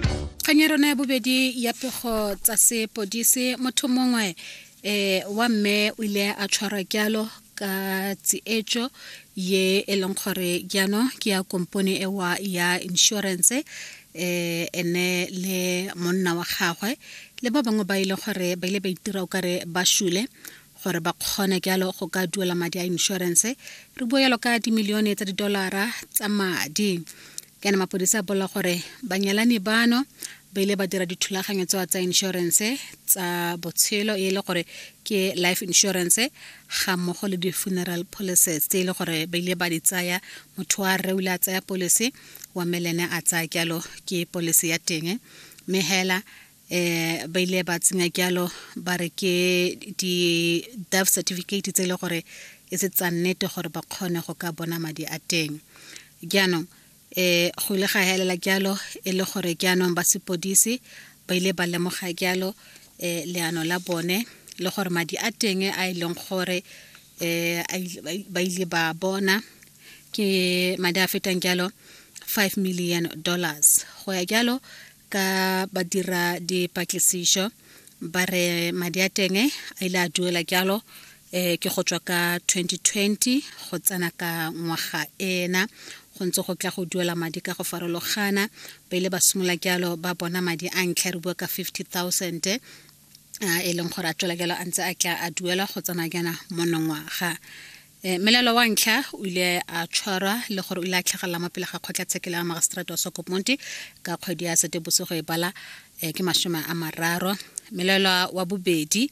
kgang ya rona ya bobedi ya pego tsa sepodise motho mongwe eh wa mme o ile a tshwarwa kyalo ka tsietso ye e leng gore jaanong ke ya kompone ewa ya insurance eh ene le monna wa gagwe le ba bangwe ba ile gore ba ile ba itira o kare ba shule gore ba kgone jalo go ka duela madi a inšorense re bua jalo ka dimilione tsa didolara tsa madi kana mapodisa a bolela gore banyalani bano ba ile ba dira dithulaganyo tsewa tsa inšorense tsa botshelo e le gore ke life insurance ga mmogo le di-funeral policies tse e le gore ba ile ba di tsaya motho wa rre o ile a tsaya policy wa melene a tsaya jalo ke policy ya teng mme hela eh ba ile ba tsenya kyalo ba re ke di death certificate tse le gore e se tsa nnete gore ba kgone go ka bona madi a teng jaanong eh go ile ga helela kyalo e le gore jaanong ba sepodisi ba ile ba lemoga kyalo eh leano la bone le gore madi a teng a e leng gore eh ba ile ba bona ke madi a fetang kyalo 5 million dollars go ya kyalo ka ba dira dipatlisišo ba re madi a teng a ile a duela jalo eh ke go tswa ka 2020 go tsena ka ngwaga ena go ntse go tla go duela madi ka go farologana ba ile ba simolola jalo ba bona madi a ntlha re bua ka 50000 e leng gore a tswela jalo a ntse a tla a duela go tsena jaana monongwaga E, melaelo wa ntlha o ile a tshwarwa le gore o ile a tlhagelela mo pele ga kgotlatshekelo ya magistrate wa sokoponti ka kgwedi ya setebosigo e bala e, ke masome a mararo melaelwa wa bobedi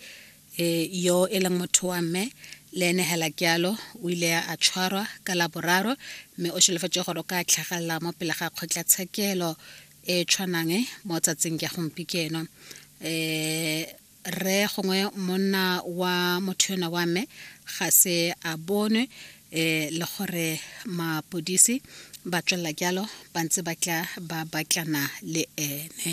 e, yo e leng motho wa mme le ene hela kealo o ile a tshwarwa ka la boraro mme o solofetse gore o ka tlhagelela mo pele ga kgotlatshekelo e tshwanang mo tsatsing ya gompikeno um rre gongwe monna wa motho yona wa me ga se a bonwe um le gore mapodisi ba tswelela jalo ba ntse ba tla ba batlana le ene